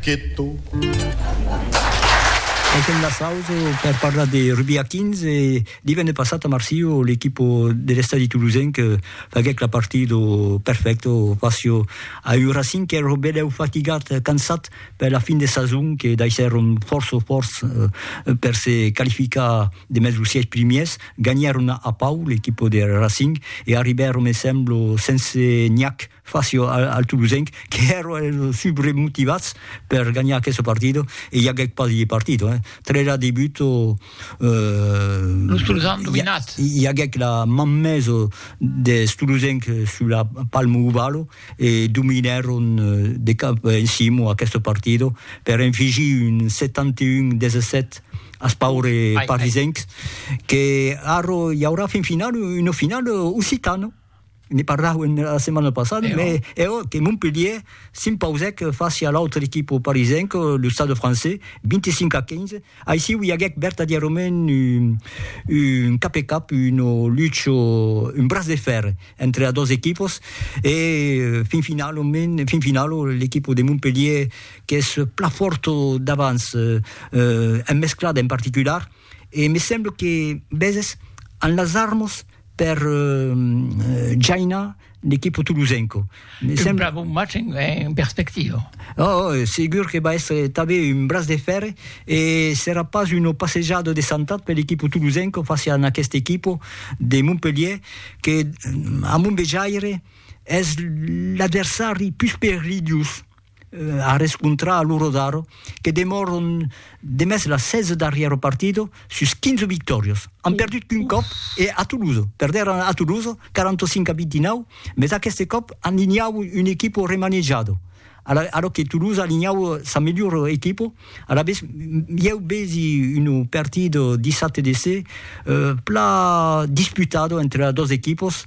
Queto. Tanquem la sausa per parlar de rugbi a 15 e divenne passat a Marsilh l'equipa de l'estadi tolosenc faguèc la partida perfècta fàcia a un Racing qu'èra benlèu fatigat, cansat per la fin de sason que daissèron fòrça fòrts per se qualificar demest los sièis primièrs. Ganhèron a Pau l'equipa de Racing e arribèron, me sembla, sense Niakh Faci al Toulousenc qu'èron eles subremotivats per ganhar aqueste partit, e i aguèc pas de partit, eh? Tres a debut, los Toulousans an dominat, i aguèc la man mesa des Toulousenc sus la Palm Oval e dominèron de cap en cima aqueste partit per enfigir un 71 17 als paures parisencs, que ara i aurà fin finala, una finala occitana. ne parlàuem era setmana passada, Eò. mais eò que Montpellier s'impausèc fàcia a l'autre equipo parisenc, lo Stade Français, 25 a 15. Aissiu i aguèc vertadièrament un, un cap e cap, un lucho, un braç de fèr entre a dos equipos e fin finalament, fin finalo, l'equipo de Montpellier qu'es plan fòrto davans, en mesclada en particular, e me semble que Bezes an las armas per Jaina l'equipo tolosenco. Me un bravo match en, en perspectiva. Oh, oh, segur que va estre tabé un braç de fèrre e serà pas una passejada de santat per l'equipo tolosenco fàcia en aquest equipo de Montpelhier que, a mon vejaire, es l'adversari pus perilhós. a rescontrar a lo Rodaro que demòron demest la 16 darrièr au partido sus 15 victòrios. An perdut qu'un còp e a Toulouse. Perdèran a Toulouse 45 a 29, mes aqueste còp an linhau un equipo remanejado, a lo que Toulouse a linhau sa melhor equipo. Alavetz, ieu vesi un partit dissabte de se pla disputado entre dos equipos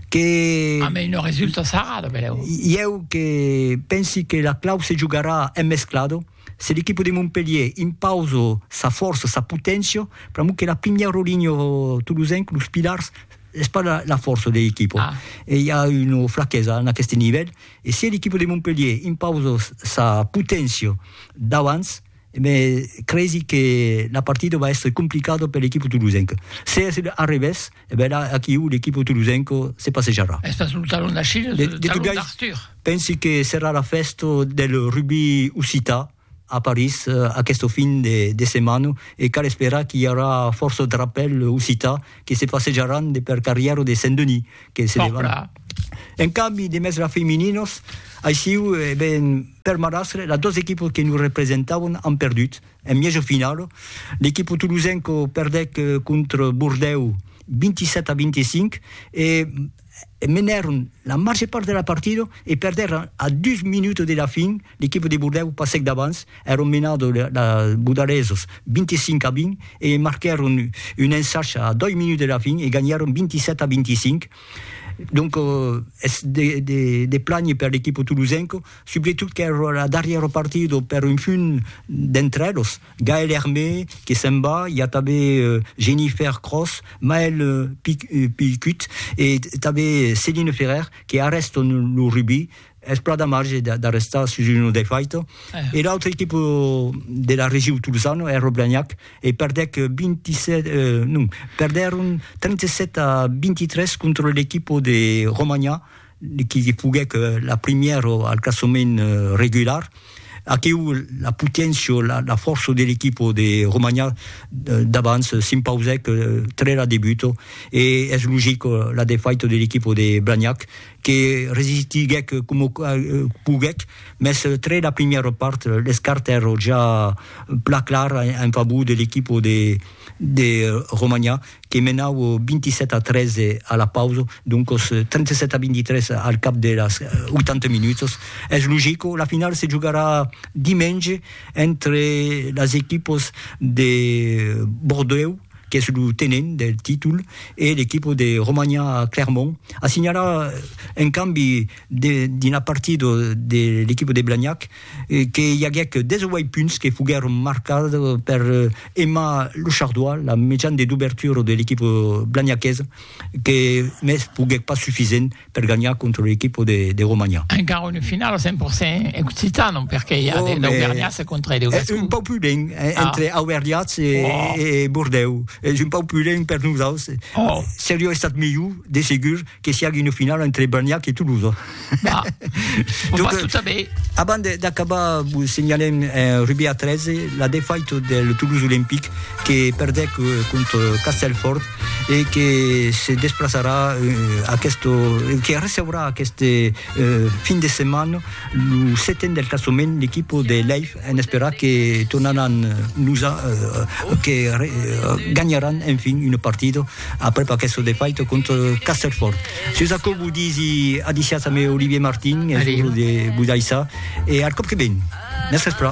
que... A mei no resulta sarrado, benlèu. Ieu que pensi que la clau se jogarà en mesclado, se l'equipo de Montpelhier impauso sa fòrça, sa poténcia, pr'amor que la primièr rolinho tolosenc, los pilars, es pas la fòrça de l'equipo. E i a una flaquesa en aqueste nivèl. E se l'equipa de Montpelhier impausa sa poténcia d'abans, me cresi que la partida va èstre complicada per l'equipa tolosenca. Se es a revés, e ben la, aquiu, l'equipa tolosenca se passejarà. Es pas lo talon d'Achilles, lo talon d'Arthur. Pensi que serà la fèsta del rugbi occitan, a París aquesta fin de setmana e cal esperar qu'i aurà fòrça drapèl occità que se passejaràn de per carrièra de Saint-Denis que se levant. En cambi de mèstra femininas, aissiu e ben per marrastre, las dos equipas que nos representavan an perdut. En mièja finala, l'equipa tolosenca perdèc contra Bordèu 27 a 25 e menèron la màger part de la partida e perdèron a dus minutas de la fin L'equipa de Bordèu passèc davants, èron menadors de Bodaresos 25 a 20 e marquèron un ensach a doi minuts de la fin e ganhèron 27 a 25. Donc es de plànher per l'equipa tolosenca, subretot qu'èra la darrièra partida per un punt d'entre eles, Gaël Hermé que se'n va, i a tanben Jennifer Cross, Maël Picut e tanben Céline Ferrer que arrèstan lo rugbi Es plan d'amarge d'arrestar sus un defaito e l'autre equip de la regiu tolosana, Air Blagnac, e perdèc 27, non, perdèron 37 a 23 contra l'equip de Romanha qui foguèc la primièra al classament regular. Aquiu la poténcia, la fòrça de l'equip de Romanha d'abans s'impausèc tre la debuta e es logic la defaita de l'equip de Blagnac que resistiguèc coma poguèc, mès tre la primièra part l'escart èra ja plan clar en favor de l'equipa de Romanha que menava 27 a 3 a la pausa, doncas 37 a 23 al cap de las 80 minutas. Es logic, la finala se jogarà dimenge entre las equipas de Bordèu, qu'es lo tenent del títol, e l'equipa de Romania Clermont a signalat un cambi dins la partida de l'equipa de Blagnac, que i aguèc 18 punts que foguèron marcats per Emma Lechardois, la mejana de dobertura de l'equipa blagnaquesa, que mès foguèc pas sufisent. per ganhar contra lo equipo de de Romanha. Encara una finala 100% occitano perque i a de d'auvergnats contra de gascons. Es un pauc pudent entre auvergnats e e Bordèu. Es un pauc pudent per nosaus. Seriá estat milhor de segur que siague una finala entre Blagnac e Tolosa. Bah, o pas tout a bé. Abans d'acabar vos senhalem en rugbi a 13 la defaita del Toulouse Olympique que perdèc contra Castelfòrt e que se desplaçarà aqueste, que receurà aqueste fin de setmana lo seten del classement l'equipa de Leif en esperar que tornaràn nos a que ganharàn enfin una partida aprèp aquesta defaita contra Castellfòrt. Sus aquò vos disi adiciatz amé Olivier Martin e vos daissar e al còp que ven. Mès vespra.